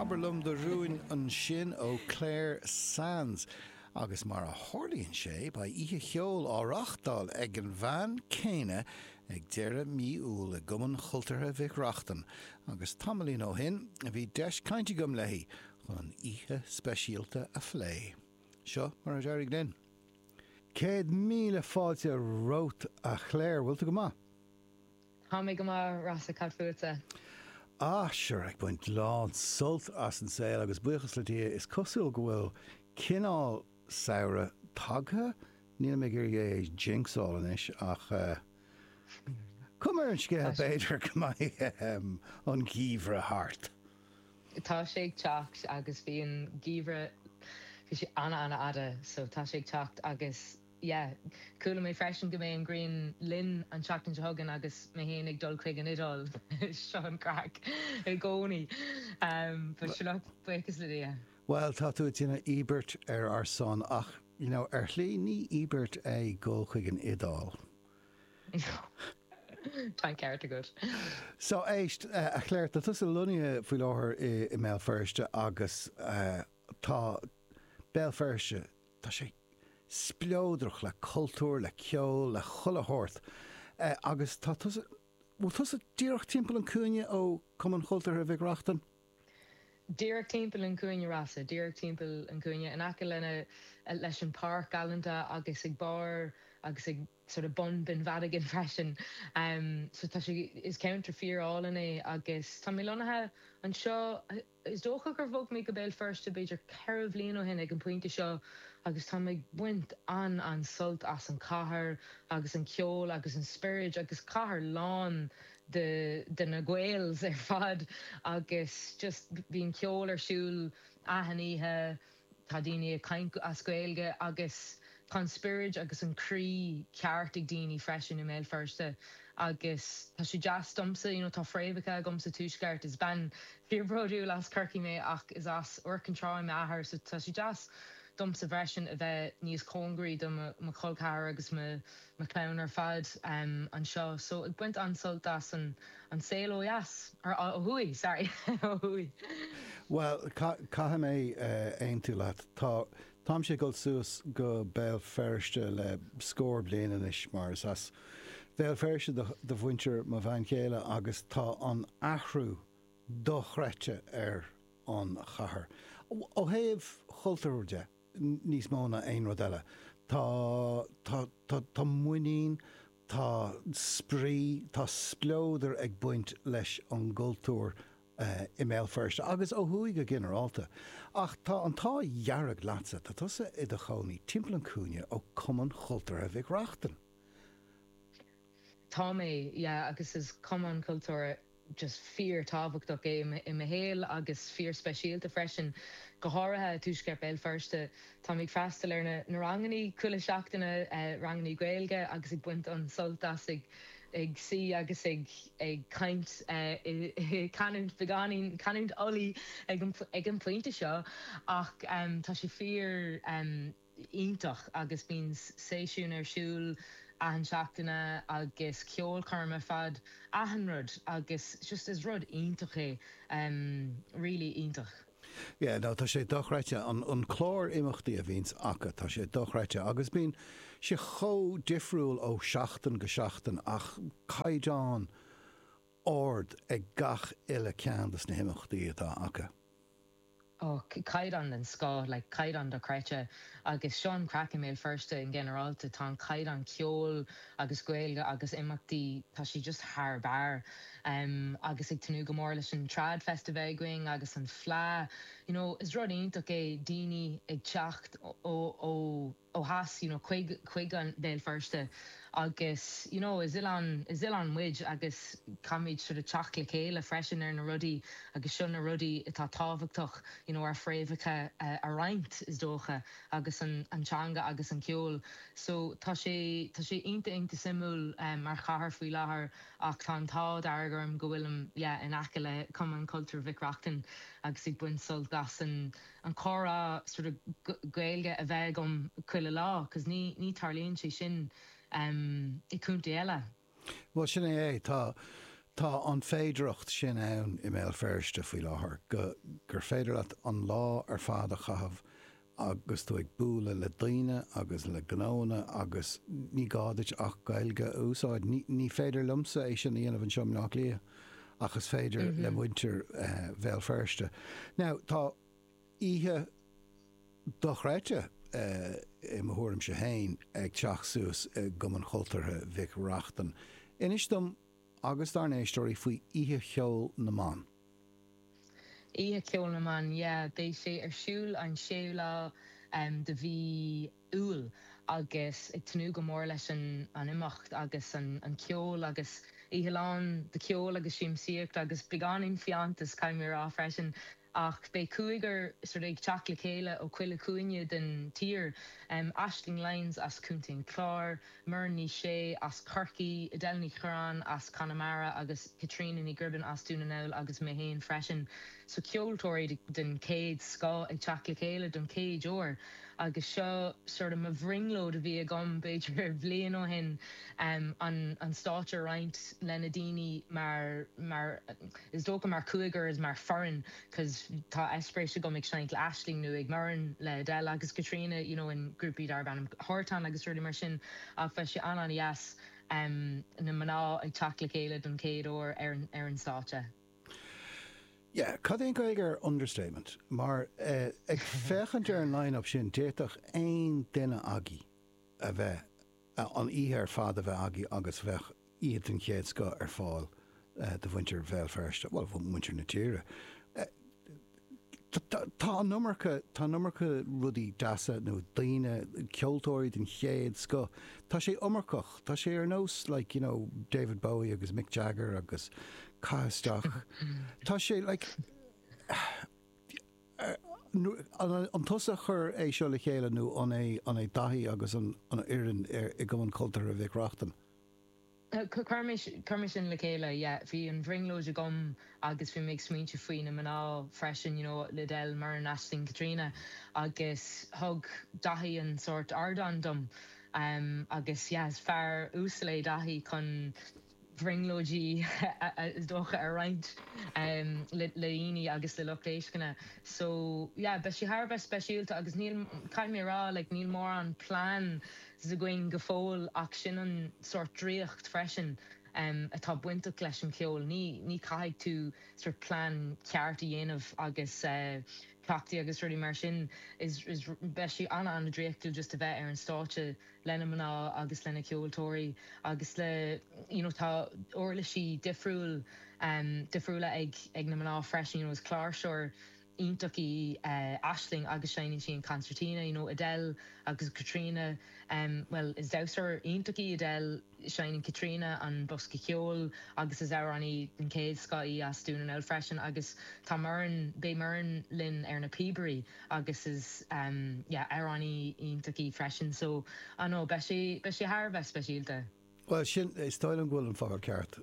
Abair liom do rúin ansin ó Clare Sands. Agus mar a tharlaíonn sé, beidh Oíche Cheoil á reáchtáil ag an bhean céanna ag deireadh mí Iúil i gCumann Chultúrtha Mhic Reachtain agus tamaillín ó shin a bhí deis cainte agam léi chun oíche speisialta a phlé. Seo mar a d'éirigh linn. Céad míle fáilte romhat a Chlare, bhfuil tú go maith? Tá mé go maith, Rossa, cad fútsa? Ah, sure, ag baint lán sult as an saol agus buíochas le Dia, is cosúil go bhfuil cineál samhradh tagtha, nílim ag iarraidh é a jinxáil anois ach eh, coim ar an scéal, b'fhéidir go mbeidh ehem an geimhreadh thart. Tá sé ag teacht agus bhí an geimhreadh, bhí sé ana-ana-fhada so tá sé ag teacht agus yeah. Chuala mé freisin go mbeidh an ghrian linn an tseachtain seo chugainn agus mé féin ag dul chuig an Iodáil. Seo an craic i gcónaí. But sure look, buíochas le Dia. Bhuel, tá tú ag déanamh íobairt ar ár son ach, you know, ar shlí ní íobairt é dhul chuig an Iodáil. Tá an ceart agat. So, éist, a Chlare, tá tusa lonnaithe faoi láthair i mBéal Feirste agus tá Béal Feirste Tá sé spleodrach le cultúr, le ceol, le chuile shórt agus tá tusa, bhfuil tusa díreach timpeall an cúinne ó Cumann Chultúrtha Mhic Reachtain? Díreach timpeall an cúinne Rossa, díreach timpeall an cúinne, in aice lena, leis an páirc galánta agus ag barr agus ag sort of bun Binn Mhadigan freisin. So tá sé, is ceantar fíor álainn é agus tá mé lonnaithe anseo, Is dócha gur bhog mé go Béal Feirste b'fhéidir ceithre bhliain ó shin ag an bpointe seo agus táim ag baint an-an-sult as an cathair agus an ceol agus an spiorad agus cathair lán de de na Gaels ar fad agus just bíonn ceol ar siúl achan oíche Tá daoine ag caint as Gaeilge agus tá an spiorad agus an croí ceart ag daoine freisin i mBéal Feirste agus tá sé deas domsa, you know tá fréamhacha agam sa Tuaisceart, is bean fíor bródúil as Corcaigh mé ach is as Iúr Cinn Trá m'athair so tá sé deas domsa freisin a bheith níos cóngaraí do mo chol ceathair agus mo na clann ar fad anseo so ag baint an-sult as an saol ó dheas, nó ó thuaidh, sorry, ó thuaidh. Bhuel, caithfidh mé aontú leat. Tá, táimse ag dul suas go Béal Feirste le scór bliain anois mar is as Béal Feirste do, do mhuintir mo bhean chéile agus tá an athrú dochreidte ar an chathair, ó thaobh chultúir de. níos mó ná aon rud eile, tá, tá, tá, tá muinín, tá spraoi, tá spleodar ag baint leis an gcultúr i mBéal Feirste agus ó thuaidh go ginearálta. Ach tá an t-ádh dearg leatsa, tá tusa i do chónaí timpeall an chúinne ó Cumann Cultúrtha Mhic Reachtain. Tá mé, yeah, agus is cumann cultúrtha just fíor-tábhachtach é i mo shaol agus fíor-speisialta freisin, go háirithe i dtuaisceart Béal Feirste. Táim ag freastal ar na na ranganna chuile seachtaine, ranganna Gaeilge agus ag baint an-sult as ag ag suí agus ag ag caint i i canúint beagáinín, canúint Ulaidh ag an ag an bpointe seo ach tá sé fíor, iontach agus bíonn seisiúin ar siúl achan seachtaine agus ceolchoirm ar fad achan rud agus just is rud iontach é really iontach. Yeah no tá sé dochreidte an clár imeachtaí a bhíonns acu tá sé dochreidte agus bíonn sé chomh difriúil ó seachtain go seachtain ach caighdeán ard ag gach uile ceann de na himeachtaí atá acu. Ó, caighdeán den scoth, like caighdeán dochreidte agus seo an craic i mBéal Feirste i nginearálta, tá an caighdeán ceoil agus Gaeilge agus imeachtaí, tá sé just thar barr agus ag tnúth go mór leis an Trad Fest a bheith againn agus an Fleadh, you know is rud iontach é daoine ag teacht ó. ó theas you know chuig chuig an Béal Feirste agus you know is oileán is oileán muid agus caithfimid sort of teacht le chéile freisin ar na rudaí agus seo na rudaí atá tábhachtach you know ár fréamhacha a roinnt is dócha agus an an teanga agus an ceol so tá sé tá sé iontach iontach suimiúil mar chathair faoi láthair ach tá an t-ádh dearg orm go bhfuilim yeah in aice le Cumann Cultúrtha Mhic Reachtain agus ag baint sult as an an comhrá sort of Gaeilge a bheith agam chuile lá cos ní ní tarlaíonn sé sin em i contae eile. Bhuel sin é é, tá tá an féidearthacht sin ann i mBéal Feirste faoi láthair go gur féidir leat an lá ar fad a chaitheamh agus tú ag bualadh le daoine agus le gnóanna agus ní gá duit ach Gaeilge a úsáid. Ní ní féidir liomsa é sin a dhéanamh anseo i mBleá Cliath. ach is féidir le muintir Bhéal Feirste. Now, tá oíche dochreidte, i mo thuairimse féin, ag teacht suas i gCumann Cultúrtha Mhic Reachtain. Inis dom agus dár n-éisteoirí faoi Oíche Cheoil na mBan. Oíche Cheoil na mBan, yeah. Beidh sé ar siúl an séú lá de mhí. Iúil agus ag tnúth go mór leis an imeacht agus an ceol agus oíche lán de cheol agus siamsaíocht agus beagáinín fiántas caithfidh mé a rá freisin ach beidh cúigear ag teacht le chéile ó chuile chúinne den tír, Aisling Lyons as Contae an Chláir, Muireann Ní Shé as Corcaigh, Edel Ní Churraoin as Conamara agus Caitríona Ní Ghribín as Dún na nGall agus mé féin freisin. So ceoltóirí den chéad scoth ag teacht le chéile don chéad uair agus seo sort of mo bhrionglóid a bhí agam b'fhéidir bliain ó shin an stáitse a roinnt lena daoine mar mar is dócha mar chúigear is mar foireann. 'cos tá eispéiris agam ag seinnt le Aisling nó ag Muireann le Edel agus Caitríona you know in grúpaí darb ainm Hartan agus rudaí mar sin ach bheadh sé an-an-dheas na mná ag teacht le chéile don chéad uair ar an stáitse. Yeah, cad é an Ghaeilge ar understatement? Mar ag féachaint ar an line-up sin d'fhéadfadh aon duine agaibh a bheith an oíche ar fad a bheith agaibh agus bheadh oíche den chéad scoth ar fáil do mhuintir Bhéal Feirste, bhuel, muintir na tíre. Tá an iomarca, tá an iomarca rudaí deasa nó daoine, ceoltóirí den chéad scoth, tá sé iomarcach, tá sé ar nós like, you know, David Bowie agus Mick Jagger agus caith isteach, tá sé like, An tusa a chuir é seo le chéile nó an é Daithí agus an fhoireann i gCumann Cultúrtha Mhic Reachtain? Chuir mé sin le chéile, yeah. Bhí an bhrionglóid agam agus bhí mé ag smaointiú faoi na mná freisin, you know, Edel, Muireann, Aisling, Caitríona agus thug Daithí an sórt ardán dom agus yeah, is fear uasal é Daithí chun, bhrionglóidí is dócha a roinnt le daoine agus le lucht éisteachta so yeah beidh sé thar a bheith speisialta agus níl, caithfidh mé a rá like níl mórán plans againn go fóill ach sin an sórt draíocht freisin atá bainteach leis an cheol, ní ní caithfidh tú sort plean ceart a dhéanamh agus cleachtaí agus rudaí mar sin is is beidh sé ana ana draíochtúil just a bheith ar an stáitse. lena mná agus lena ceoltóirí agus le you know tá uirlisí difriúil difriúla ag ag na mná freisin you know is cláirseoir iontach í Aisling agus seinneann sí an concertina you know Edel agus Caitríona bhuel is damhsóir iontach í Edel seinneann Caitríona an bosca ceoil agus is amhránaí den chéad scoth í as Dún na nGall freisin agus tá Muireann beidh Muireann linn ar na píobairí agus is amhránaí iontach í freisin so I know beidh sé beidh sé thar a bheith speisialta. Bhuel sin, is dóigh liom go bhfuil an focal ceart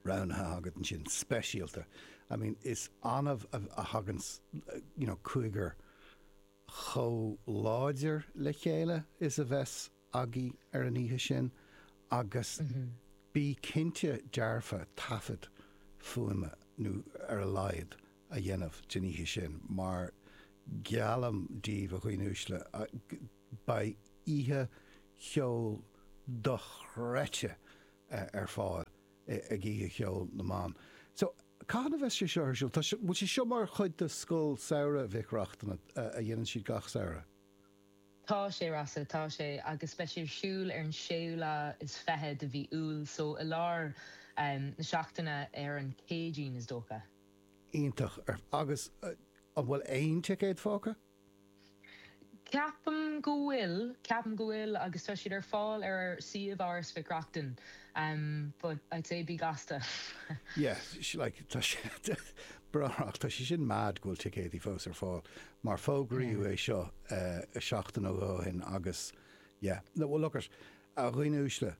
roghnaithe agat ansin, speisialta. I mean is annamh a thagann you know cúigear chomh láidir le chéile is a bheas, aghaidh ar an oíche sin agus bí cinnte dearfa taifead fuaime nó ar a laghad a dhéanamh den oíche sin mar geallaim daoibh a dhaoine uaisle beidh oíche cheoil dochreidte ar fáil ag Oíche Cheoil na mBan. So, cathain a bheas sé seo ar siúl? Tá, bhfuil sé seo mar chuid de Scoil Samhraidh Mhic Reachtain a dhéanann siad gach samhradh? Tá sé, Rossa, tá sé, agus beidh sé ar siúl ar an séú lá is fiche de mhí Iúil, so i lár na seachtaine ar an Céadaoin, is dócha. Iontach. Agus an bhfuil aon ticéad fágtha? Ceapaim go bhfuil, ceapaim go bhfuil agus tá siad ar fáil ar suíomh Áras Mhic Reachtain but I'd say bí gasta. Yeah, like, tá sé, tá sé sin mad go bhfuil ticéidí fós ar fáil. mar fógraíodh é seo seachtain nó dhó ó shin agus yeah, no, well look it, a dhaoine uaisle,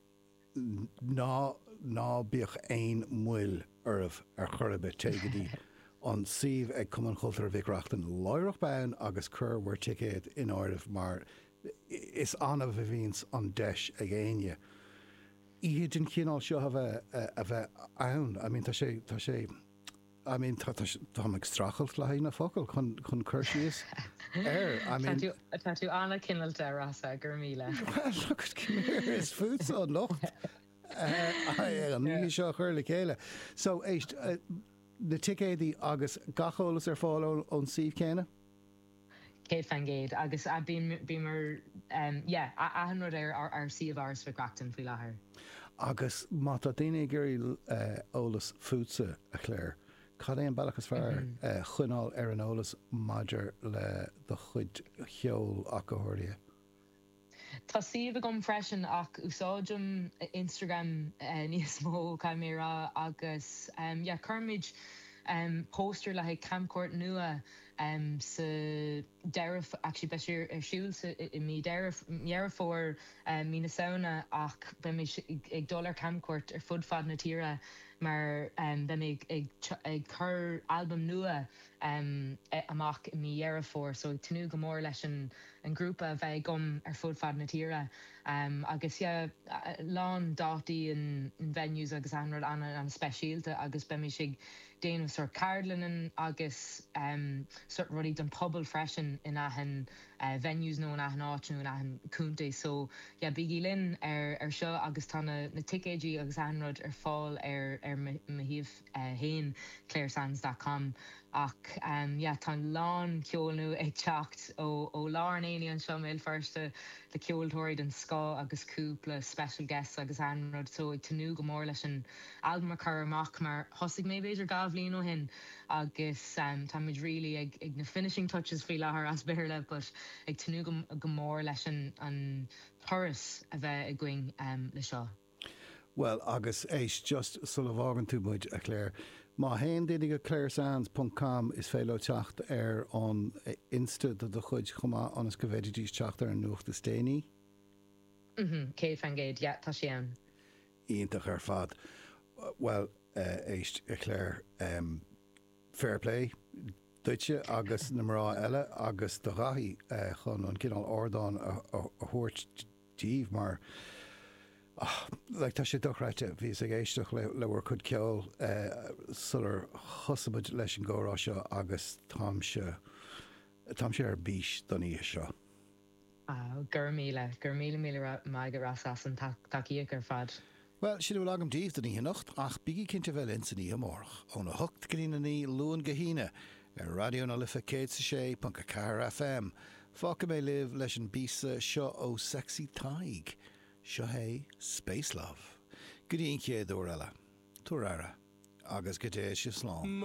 ná, ná bíodh aon mhoill oraibh ar chor ar bith, téigh go dtí an suíomh ag Cumann Cultúrtha Mhic Reachtain láithreach bonn agus cuirigí bhur ticéad in áireamh mar is annamh a bhíonns an deis ag éinne oíche den chineál seo a bheith, a bheith ann, I mean tá sé, tá sé. I mean, tá, tá, táim ag streachailt le haghaidh na focail chun, chun cur síos air. Tá tú, tá tú an-chineáilte, Rossa, go raibh míle. Well, look it, come here, is fútsa an locht an oíche seo a chur le chéile. So, éist, na ticéadaí agus gach eolas ar fáil ón, ón suíomh céanna. 100 fan gcéad agus bíonn bíomar yeah achan rud ar ár suíomh Áras Mhic Reachtain faoi láthair. Agus má tá daoine ag iarraidh eolas fútsa, a Chláir, cad é an bealach is fearr choinneáil ar an eolas maidir le do chuid ceoil ach go háirithe? Tá suíomh agam freisin ach úsáidim Instagram níos mó caithfidh mé a rá agus yeah cuirimid posts ar le haghaidh camchuairt nua sa deireadh actually beidh sé ar siúl sa i mí Dheireadh Fómhair mí na Samhna ach beidh muid ag dul ar camchuairt ar fud fad na tíre mar beidh mé ag ag cur albam nua um e amach i mí Dheireadh Fómhair so ag tnúth go mór leis an an grúpa a bheith agam ar fud fad na tíre um agus yeah a lán dátaí and venues agus achan rud an-an-speisialta agus beimis ag déanamh sort ceardlannan agus um sort rudaí don pobal freisin in achan eh venues nó in achan áit nó in achan contae so yeah bígí linn ar ar seo agus tá na na ticéidí agus achan rud ar fáil ar ar mo mo shuíomh. 1, claresands dot com Ach yeah tá a lán ceol nua ag teacht ó ó lár an aonaigh anseo i mBéal Feirste le ceoltóirí den scoth agus cúpla special guests agus achan rud so ag tnúth go mór leis an albam a chur amach mar thosaigh mé b'fhéidir dhá bhliain ó shin agus tá muid really ag ag na finishing touches faoi láthair as Béarla but ag tnúth go go mór leis an an turas a bheith againn le seo. Bhuel, agus éist, just sula bhfágann tú muid, a Clare, má théann daoine go claresands ponc com is féidir leo teacht ar an Insta do do chuid chomh maith ionas go bhféididís teacht ar an nuacht is déanaí. Umhm, céad faoin gcéad, yeah, tá sé ann. Iontach ar fad. Bhuel, éist, a Clare, em, fair play duitse agus na mná eile agus do Dhaithí chun an cineál ardán a thabhairt díobh mar Like tá sé dochreidte, bhíos ag éisteacht le le bhur cuid ceoil sular thosaigh muid leis an gcomhrá seo agus táimse táimse ar bís don oíche seo. Go raibh míle, go raibh míle míle maith agat Rossa as an tacaíocht ar fad. Bhuel, sin a bhfuil agam daoibh don oíche anocht, ach bígí cinnte a bheith linn san oíche amárach, óna hocht go dtí a naoi, Luan go hAoine, ar Raidió na Life 106.4 FM. Fágfaidh mé libh leis an bpíosa seo ó Sexy Tadhg. Seo é Space Love. Go dtí an chéad uair eile, tabhair aire, agus go dté sibh slán.